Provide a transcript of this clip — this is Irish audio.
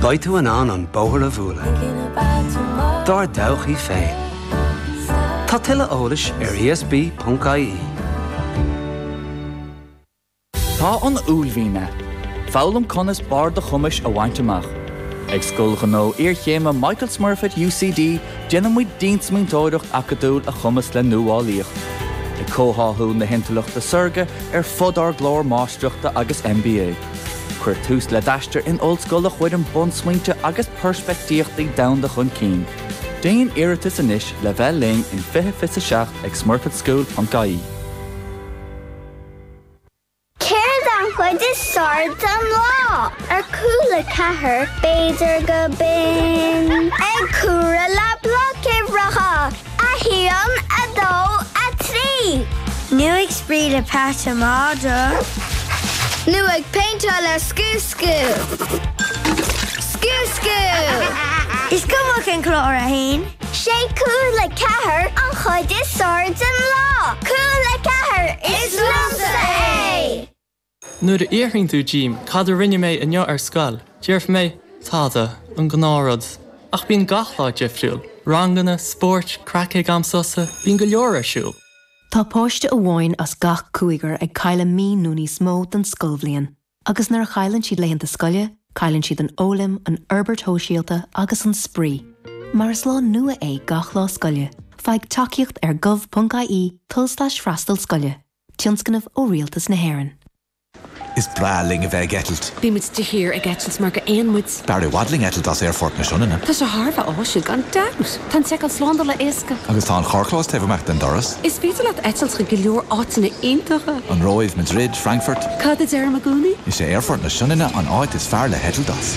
Beidh tú in ann an bóthar a bhualadh dár dtodhchaí féin. Tá tuilleadh eolais ar ESB.ie. Tá an uaillmhian ann. Foghlaim conas barr do chumais a bhaint amach. Ag Scoil Ghnó Iarchéime Michael Smurfit UCD déanaimid diansmaointeoireacht acadúil a chumasc le nuálaíocht, ag comhtháthú na hintleachta saorga ar fud ár gclár Máistreachta agus MBA. Cuir tús le d'aistear in ollscoil a chuireann bunsmaointe agus peirspeictíochtaí domhanda chun cinn. Déan iarratas anois le bheith linn in 20 20 7 ag smurfitschool.ie. Céard an chuid is fearr den lá? Ar Cúla4, b'fhéidir gurb in. Ag comhaireamh le bloic uimhreacha. 1, 2, 3. Nó ag spraoi le Peadaí Madra. Nó ag péinteáil le scúscú. Scúscú! Is cuma cén clár é. 'Sé Cúla4 an chuid is fearr den lá. Cúla4 is liomsa é! Nuair a fhiafraíonn tú díom cad a rinne mé inniu ar scoil, déarfaidh mé, tada, an gnáth rud. Ach bíonn gach lá difriúil. Ranganna, spóirt, craic ag am sosa, bíonn go leor ar siúl. Tá páiste amháin as gach cúigear ag cailleadh mí nó níos mó den scoilbhliain agus nuair a chailleann siad laethanta scoile, cailleann siad an fhoghlaim, an fhorbairt shóisialta agus an spraoi. Mar is lá nua é gach lá scoile, faigh tacaíocht ar gov.ie tulslais freastal scoile. Tionscnamh ó Rialtas na hÉireann. Is breá linn a bheith ag eitilt. Bíonn muid de shíor ag eitilt mar gur éin muid. B'fhearr i bhfad linn eitilt as Aerfort na Sionainne. Tá sé thar a bheith áisiúil, gan dabht. Tá an tseiceáil slándála éasca. Agus tá an carrchlós taobh amuigh den doras. Is féidir leat eitilt chuig go leor áiteanna iontacha. An Róimh, Madrid, Frankfurt. Cad a deir mo ghúnaí? Is é Aerfort na Sionainne an áit is fearr le heitilt as.